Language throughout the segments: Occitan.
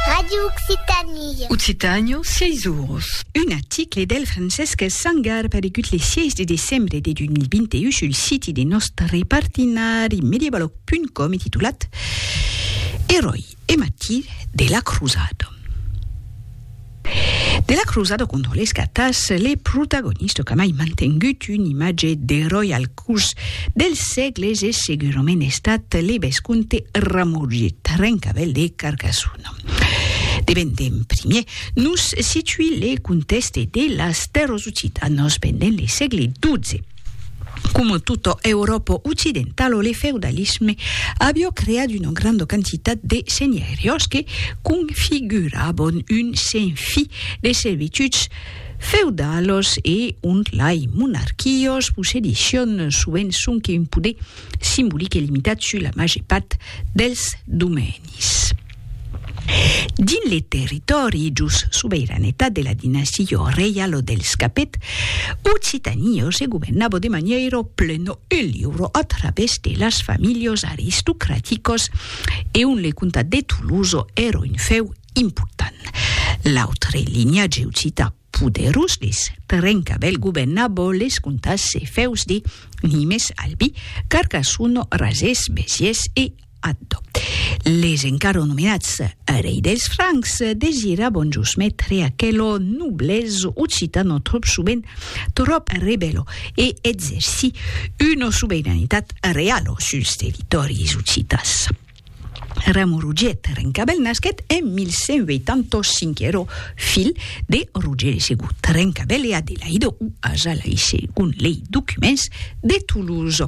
Radio Occitanie. Occitània, sièis oros. Un article del Francesc Sangar aparegut le 6 de decembre de 2021 sul siti de nòstre partenari medievalog.com e titulat Eròi e martir de la crosada. De la crosada condolesca tàs le protagonista qu'a mai mantengut un imatge d'eròi al curs dels sègles es segurament estat le vescomte Ramorget, rencavel de Carcassona. De ben d'en primier, nos situi le contèxte de las tèrras occitanas pendent le sègle XII. Coma tota Euròpa occidentala, le feudalisme avió creat una granda quantitat de senheriós que configuravan un senfi de servituds feudalos e ont lai monarquiós possedission sovent sonque un poder simbolic e limitat sus la màger part dels domenis. Dins le territòri jos sobeiranetat de la dinastia reialo dels Capet, Occitània se governava de manièira plena e liura a través de las familhas aristocraticas e ont le comtat de Tolosa èra un fèu important. L'autre linhatge occità Poderós les trenca bèl gobenna bo les contas se fèus di nimes albi carcassono rasés besies e addo les encaro nomenats rei dels francs desira bon jos metre aquelo noblès occitano tròp sovent tròp rebèlo e exerci una sobeiranitat realo suls territòris occitans. Remo Rugiet Rencabèl nasquèt en 1185, ero filh de Roger de Segut Rencabèl e Adelaïde o Azalaï segon lei documents de Toulouse.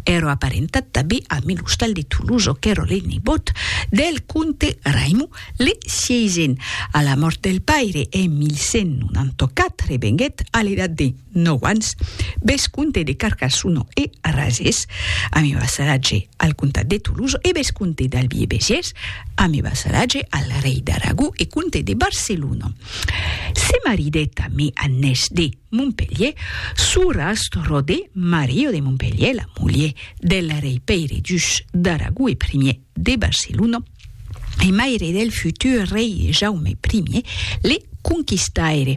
Ero aparentat tanben a Melostal de Toulouse qu'ero le nebòt del comte Raimon le Sieisen. A la mòrt del paire en 1194 venguèt a l'edat de. 9 ans, vescomte de Carcassona e Arrasés, ami vassalatge al comtat de Tolosa e vescomte d'Albi e Besiers, ami vassalatge al rei d'Aragó e comte de Barcelona. Se maridèt amé Annès de Montpelhier, sorrasc Rodé Mario de Montpelhier, la mulher del rei Pèire Duc d'Aragó e primier de Barcelona e maire del futur rei Jaume I le Conquistaire.